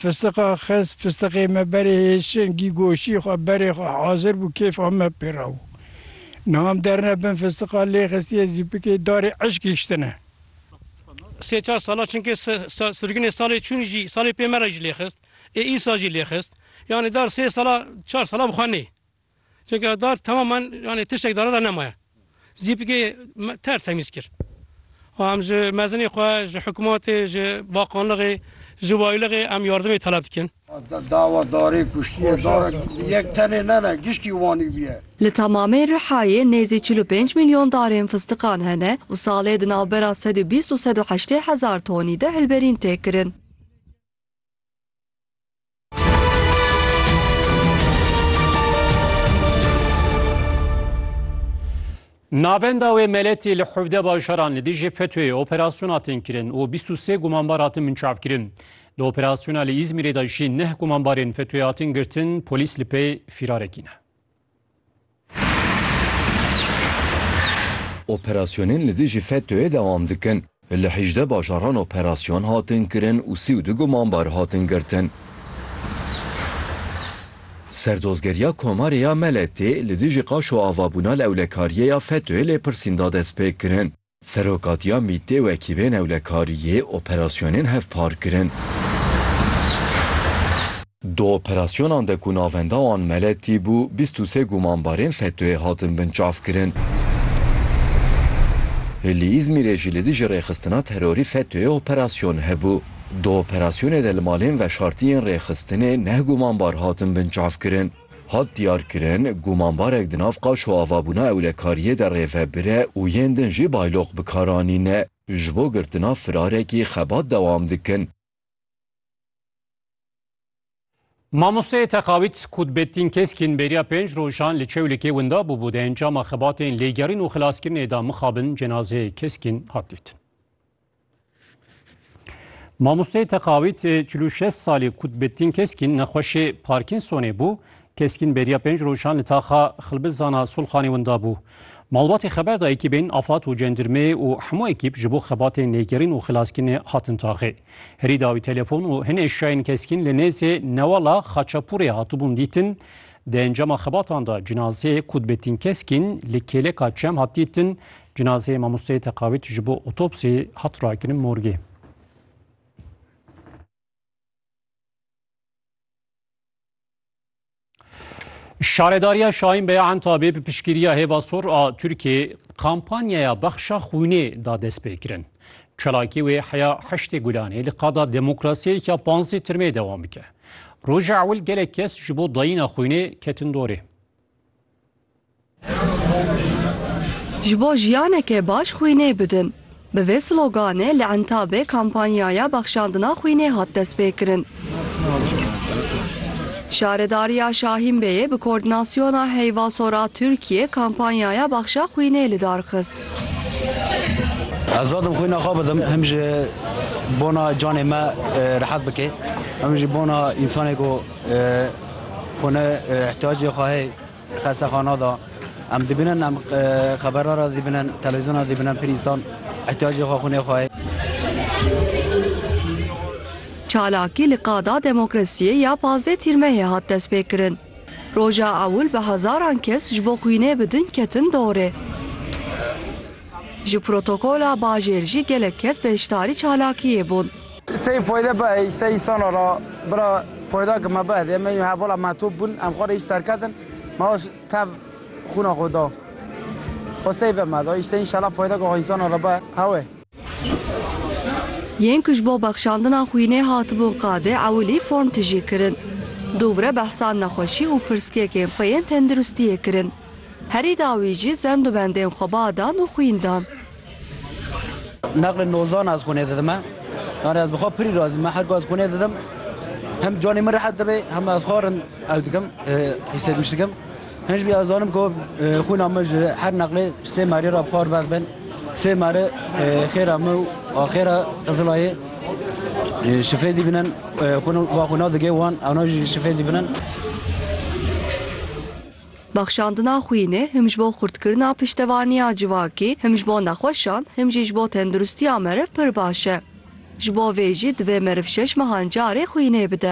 Fistiqa xist, fistiqê me berê hêşin, gî goşî xwe berê xwe hazir bû, kêfa me pê re bû. Niha em derine bin fistiqa lê xistiye zîpikê darê eşq hiştine. Sê çar sala çinkê sirginê salê çûn jî salê pê me re jî lê xist ê îsa jî lê xist. Yanî dar sê sala çar sala bi xwe nê. Çunke dar temamen yanê tiştek dara de nemaye. Zîpikê ter temîz kir. Û em ji mezinê xwe, ji hikûmetê, ji bakanlixê, ji wayilixê em yardimê teleb dikin. Dawa darê kuştiyê dara yek tenê ne ne giştî Wanî bûye. Li tamamê Rihayê nêzî çil û pênc milyon darên fistiqan hene û salê di navbera sed û bîst û sed û heştê hezar tonî de hilberîn tê kirin. Navenda wê meletê li hevde bajaran li dijî FETÖ'yê operasyon hatin kirin û 23 gumanbar hatin minçavkirin. Di operasyona li Îzmîrê de jî neh gumanbarên FETÖ'yê hatin girtin, polîs li pê fîrarekî ne. Operasyonên li dijî FETÖ'yê dewam dikin. Li hejdeh bajaran operasyon hatin kirin û sî û du gumanbar hatin girtin. Serdozgeriya Komarê ya Meletê li dijî qaş û avabûna lewlekariyê ya FETÖ'yê lêpirsîn da destpêkirin. Serokatiya MĪT'ê wekî vê newlekariyê operasyonên hevpar kirin. Di operasyonan de ku navenda wan Meletî bû, bîst û sê gumanbarên FETÖ'yê hatin binçavkirin. Li Îzmîrê jî li dijî rêxistina terorî FETÖ'yê operasyon hebû. Di operasyonê de li malên veşartî yên rêxistinê neh gumanbar hatin binçavkirin. Hat diyarkirin, gumanbarek di nav qaç û avabûna ewlekariyê de rêvebir e û yên din jî bayloq bi kar anîne. Ji bo girtina firarekî xebat dewam dikin. Mamosteyê teqawît Kutbettin Keskin bêriya pênc rojan li Çewlikê winda bûbû. Di encama xebatên lêgerîn û xilaskirinê de mixabin cenazeyê Keskin hat dîtin. Mamosteyê teqawît çil û şeş salî Kutbettin Keskîn nexweşê Parkinsonê bû. Keskîn beriya pênc rojan li taxa Xilbizana Solxanê winda bû. Malbatê xeber da ekîbên Afad û Cendirmeyê û hemû ekîb ji bo xebatên lêgerîn û xilaskirinê hatin taxê. Herî dawî telefon û hin eşyayên Keskîn li nêzê Newala Xaçapûrê hatibûn dîtin, Di encama xebatan de cinazeyê Kutbettin Keskin li kêleka Çem hat dîtin. Cinazeyê mamosteyê Teqavit ji bo otopsî hat rakirin morgê. Şaredariya Şahin Beya Entabê bi piştgiriya Hêva Sor a Tirkiyê kampanyaya bexşa xwînê da destpêkirin. Çalakî wê heya Heştê Gulanê li qada demokrasiyeyeke panzdeh tirmê dewam bike. Roja ewil gelek kes ji bo dayîna xwînê ketin dorê. Ji bo jiyaneke baş xwînê bidin. Bi vê sloganê li Entabê kampanyaya bexşandina xwînê hat destpêkirin. Şaredariya Şahînbeyê bi Koordînasyona Heyvasora Tirkiyê kampanyaya Baxşa Xwînê li dar xist. Ez didim xwîna xwe bidim him ji bona canê me rehet bike, him jî bona însanê ku xwîna îhtiyacê xwe heye. Di xestexana de em dibînin, em xeberan re dibînin, televîzyon re dibînin, pir însan îhtiyacê xwe, xwînê xwe ye. Çalakî li Qada Demokrasiyê ya pazdeh Tîrmehê hat destpêkirin. Roja ewil bi hezaran kes ji bo xwînê bi din ketin dorê. Ji protokola bajêr jî gelek kes beşdarî çalakiyê bûn. Sey foyde be ey sey îsana ra bira foyda ki me be hediye me yû hevala metop bûn em xwe rê îş derketin me aş tev xûna xwe da xwe sey ve me da îşte înşela foyda ki xwe îsana ra be hewê. Yên ku ji bo bexşandina xwînê hatibûn qadê ewilî form tijî kirin. Dûvre behsa nexweşî û pirsgekên xwe yên tenduristiyê kirin. Herî dawî jî zend û bendên xwe ba dan û xwîn dan. Nexlê nozdan ez xwînê didim e. Yani ez bi xwe pirî razî me. Her ku ez xwînê didim hem canê min rehet dibê hem ez xwe rind ew dikim hîsêdiş dikim. Hinc bî ez zanim ku xwîna min ji her nexlê sê merê re bi xwe rivez bin. Sê merê xêra min û axêra Qizilayê şifê dîbinin xwîna digê wan ewna jî şifê dîbinin. Bexşandina xwînê him ji bo xurtkirina piştevaniya civakî, him ji bo nexweşan, him jî ji bo tenduristiya meriv pir baş e. Ji bo vê jî divê meriv şeş mehan carê xwînê bide.